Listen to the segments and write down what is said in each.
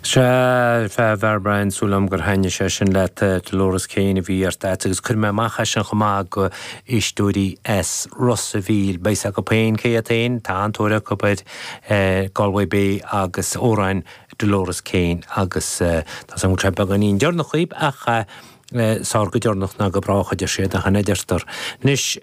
Sea, a Bhriain, súil agam gur thaitnigh sé sin leat, Dolores Keane a bhí uait, agus chuir mé amach é sin chomh maith go éisteoirí i Ros a' Mhíl. Beidh 's acu féin cé iad féin, tá an-tóir acu ar Galway Bay agus amhráin Dolores Keane agus tá 's agam go raibh sé beagáinín deireanach dhaoib ach Is fearr go deireanach ná go brách, a deir siad, nach in a deirtear? Anois,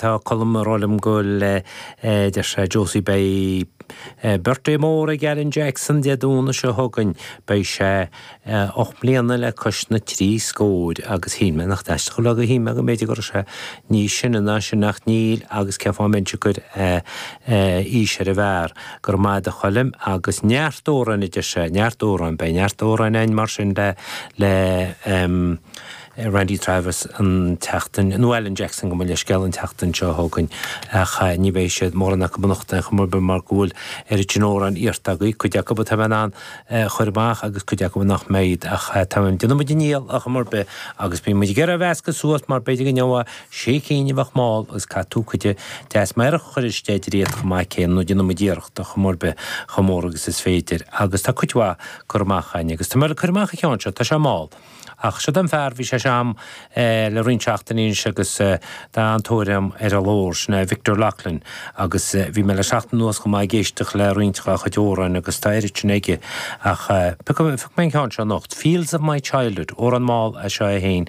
tá Colm ag rá liom go bhfuil, a deir sé, Josie, beidh birthday mór ag Alan Jackson Dé Domhnaigh seo chugainn, beidh sé ocht mbliana le cois na trí scóir, agus shíl mé, nach aisteach, shíl mé go mb'fhéidir go raibh sé níos sine ná sin, ach níl, agus cén fáth a mbeinnse ag cur aois ar an bhfear? Go raibh maith ad a Choilm, agus neart amhráin idir seo, neart amhráin, beidh neart amhráin a'inn mar sin le, le ehm Randy Travis an tseachtain, nó Alan Jackson go mo leithscéal, an tseachtain seo chugainn ach eh ní bheidh siad, mórán acub anocht eh ar chor ar bith mar go bhfuil oiread sin amhráin iarrtha agaibh, cuid acub atá mé in ann eh a chur amach agus cuid acub nach mbeidh ach eh táim, déanfaidh muid ár ndícheall ar chaoi ar bith agus beidh muid ag iarraidh a meascadh suas mar b'fhéidir go ngeobhadh Sé cinn a bheadh mall agus caithfidh tú cuid deas meidhreach a chur isteach dá réir chomh maith céanna nó déanann muid iarracht ar chaoi ar bith chomh mór agus is féidir agus tá cuid mhaith curtha amach a'inn agus tá mé le cur amach an ceann seo tá sé mall ach seod an fear bhí sé a'm le roinnt seachtainí anois agus tá an-tóir a'm air ar an gclár sin é Victor Loughlin agus bhí mé le seachtain anuas chomh maith ag éisteacht le roinnt dhá chuid amhráin agus tá oiread sin aige ach piocadh phioc mé an ceann seo anocht Fields of my childhood amhrán mall é seo é féin